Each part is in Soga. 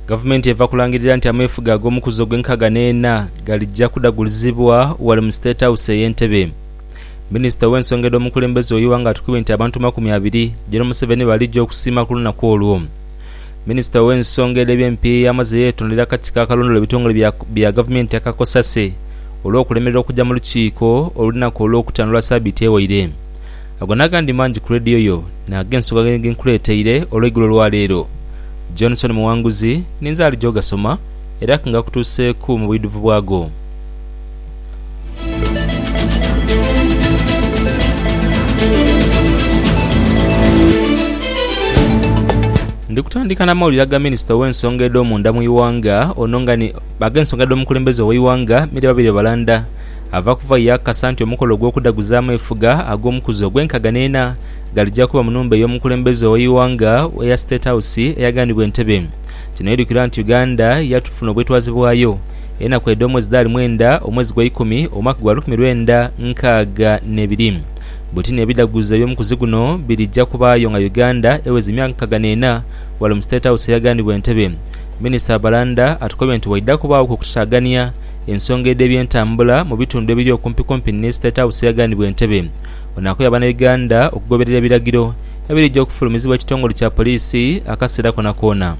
Gavumenti eva kulangirira nti ameefuga ag'omukuzo gw'enkaaga n'ena galija kudagulizibwa ghale mu State House eye Ntebe. Minisita ow'ensonga edh'omukulembeze ow'eighanga atukibwe nti abantu makumi abiri, Gen. Museveni baalija okusiima ku lunaku olwo. Minisita ow'ensonga edh'eby'empiiya amaze yeetondera akakiiko akalondoola ebitongole bya gavumenti aka cosase olw'okulemererwa okuja mu lukiiko olunaku Olwokutaano lwa sabiiti ewaire. Ago n'agandi mangi ku leediyo yo n'ag'ensonga ge nkuleeteire olweigulo lwa leero. Johnson Muwanguzi ni nze alija ogasoma era ke ngakutuuseeku mu bwidhuvu bwago. Ndi kutandika n'amawulire aga minisita ow'ensonga edh'omunda mu ighanga ono nga ni ag'ensonga edh'omukulembeze ow'eighanga Milly Babirye Balanda Ava kuva ye yaakakasa nti omukolo ogw'okudaguzaamu efuga ag'omukuzi ogw'enkaga n'ena galija kuba mu nhumba ey'omukulembeze ow'eighanga eya State House eyaghanibwa Entebbe. Kino irukira nti Uganda yatufuna obwetwaze bwayo enaku edh'omwezi dhidhali mwenda omwezi gwa ikumi omwaka gwa lukumi lwenda nkaaga n'ebiri. Butini ebidaguzo eby'omukuzi guno birija kubaayo nga Uganda eweza emyaka nkaga n'ena ghale mu State House eyaghanibwa Entebbe. Minisita Abalanda atukobye nti waidha kubaaghoku okutataagania Ensonga edh'ebyentambula mu bitundu ebiri okumpikumpi ni State House yaghanibwa entebe ono akoya Banauganda okugoberera ebiragiro ebirija okufulumizibwa ekitongole kya Poliisi akaseera konakoona.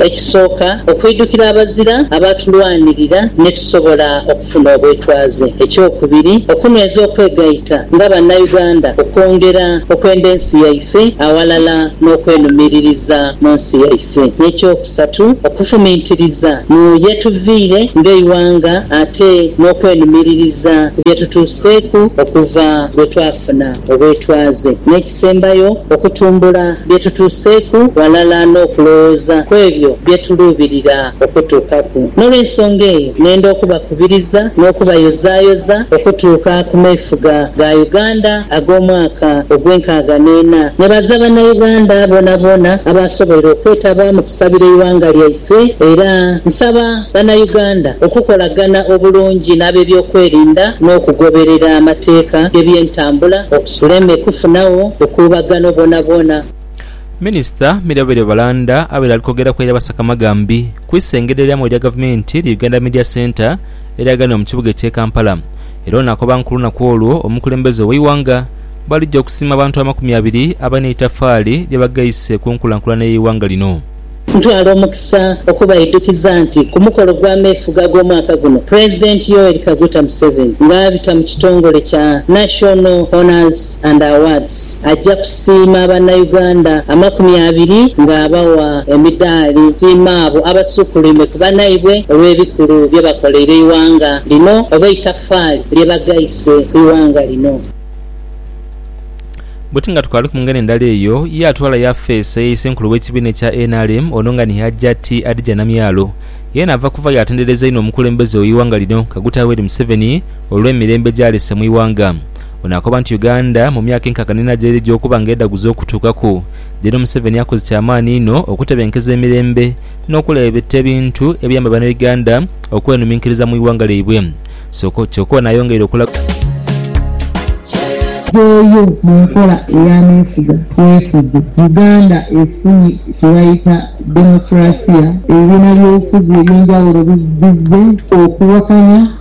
Ekisooka, okwidhukira abazira abaatulwanirira ne tusobola okufuna obwetwaze. Ekyokubiri, okunyweza okwegaita nga Bannauganda okwongera okwenda ensi yaife aghalala n'okwenumiririza mu nsi yaife. N'ekyokusatu. Satu, okufumintiriza mu yetuviire ng'eighanga ate n'okwenumiririza ku bye tutuuseeku okuva lwe twafuna obwetwaze. N'ekisembayo, okutumbula bye tutuuseeku ghalala n'okulowooza ku ebyo bye tuluubirira okutuukaku. N'olw'ensonga eyo, nenda okubakubiriza n'okubayozaayoza okutuuka ku meefuga ga Uganda. ag'omwaka ogw'enkaaga n'ena, ne baza Bannauganda boonaboona abaasoboire okwetaba mu kusabira eighanga lyaife era nsaba Bannauganda okukolagana obulungi n'abebyokwerinda n'okugoberera amateeka g'ebyentambula okusuleme kufunagho bukuubagano bwonabwona. Minisita Mirabire Balanda abaire ali kwogera kwaire abasaka amagambi ku isengedho erya mu erya Gavumenti erya Uganda Media Centre eryaganibwa mu kibuga ekye Kampala. Era ono akoba nti ku lunaku olwo omukulembeze ow'eighanga bwalija okusiima abantu amakumi abiri abalina eitafaali lye bagheise ku nkulankulana y'eighanga lino. Ntwala omukisa okubaidhukiza nti ku mukolo ogw'ameefuga ag'omwaka guno, Pulezidenti Yoweri Kaguta Museveni nga abita mu kitongole kya National Honours, and Awards aja kusiima banna Uganda amakumi abiri nga abawa emidaali siima abo abasuukuluime ku banaibwe olw'ebikulu bye bakoleire eighanga lino oba eitafaali lye bagaise ku ighanga lino. Buti nga tukaali ku ngeri ndala eyo, ye atwala yafeesi eye Isenkulu w'ekibiina ekya nrm ono nga ni Hajjati Hadijah Namyalo yeena ava kuva yaatendereza inho omukulembeze w'eighanga lino Kaguta Yoweri Museveni olw'emirembe gy'alese mu ighanga. Ono akoba nti Uganda mu myaka enkaaga n'ena gyerija okuba nga edhaguza okutuukaku, gyeno Museveni akoze kyamaani inho okutebenkeza emirembe n'okulabeta ebintu ebiyamba Banauganda okwenuminkiriza mu ighanga lyaibwe kyoka ono ayongeire okulaga. Eyo mu nkola ey'ameefuga bwefuge, Uganda efunye kyebayita Democracia, ebibiina by'obufuzi eby'enjawulo bizze okuwakanya.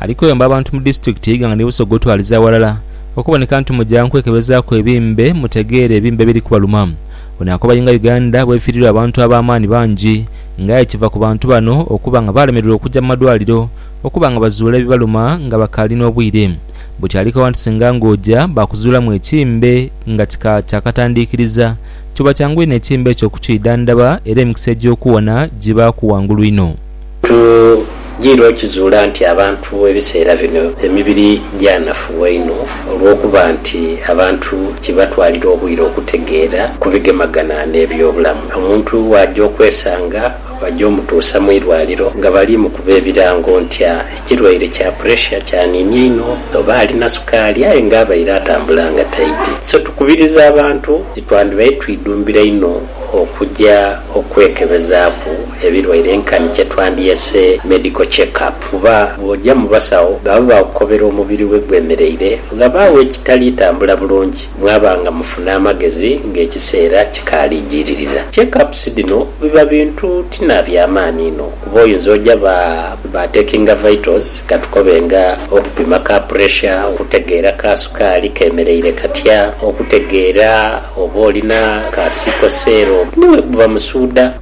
Ali kuyamba abantu mu disitulikiti ye Iganga ni Busoga otwaliza aghalala okuboneka nti muja nkwekebezaaku ebimbe mutegeere ebimbe ebiri kubaluma. Ono akobayo nga Uganda bwefiirirwa abantu ab'amaani bangi nga aye kiva ku bantu bano okuba nga baalemererwa okuja mu madwaliro okuba nga bazuula ebibaluma nga bakaali n'obwire buti ali koba nti singa nga oja baakuzuulamu ekimbe nga kika kya katandiikiriza kiba kyangu inho ekimbe ekyo okukiidhandhaba era emikisa egy'okuwona giba ku ghangulu inho. Tugirwa okukizuula nti abantu ebiseera bino emibiri gyanafuwa inho olw'okuba nti abantu kibatwalira obwire okutegeera ku bigemagana n'ebyobulamu. Omuntu bw'aja okwesanga baja omutuusa mu irwaliro nga bali mukuba ebirango nti ekirwaire kya puresha kyaniinia inho oba alina sukaali aye nga abaire atambula nga taidhi. So tukubiriza abantu nti twandibaire twidhumbira inho okuja Okwekebezaaku ebilwaire nkani kyetwandyese medical check up kuba bw'oja mu basawo baba baakukobera omubiri we gwemereire, ghabaagho ekitali tambula bulungi mwaba nga mufuna amagezi ng'ekiseera kikaali ijiririra. Check ups dhino biba bintu ti na bya maani inho. Kuba oyinza oja ba ba takinga vitals katukobe nga okupima ka pressure, okutegeera ka sukaali kemereire katya, okutegeera oba olina ka sickle cell ni bwekuba musuudha.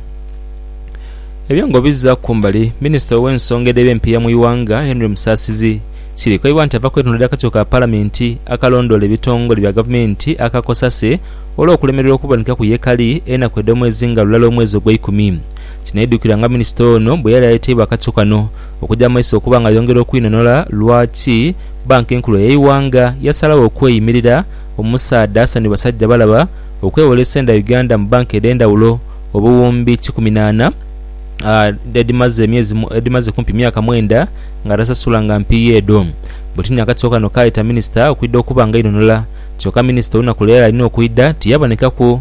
Ebyo nga obizzaaku kumbali, minisita ow'ensonga edh'eby'empiiya mu ighanga, Henry Musasizi, kirikoibwa nti ava kwetonderera akakiiko ka palamenti akalondoola ebitongole bya gavumenti aka cosase olw'okulemererwa okubonekaku yekali enaku edh'omwezi nga lulala omwezi ogweikumi Kinaidhukirwa nga minisita ono bwe yali aleteibwa akattu kano okuja mu maiso okuba nga ayongera okwinhonhola lwaki Bbanka Enkulu ey'eighanga yasalagho okweyimirira omusaadha Hassan Basajjabalaba okwewola esente dha Uganda mu bbanka edh'endhawulo obuwumbi kikumi n'ana edhimaze kumpi myaka mwenda nga tasasula nga mpiiya edho. Bwetunia akattu kano kaayeta minisita okwidha okuba nga ainhonhola kyoka minisita olunaku lwe yali alina okwidha tiyabonekaku.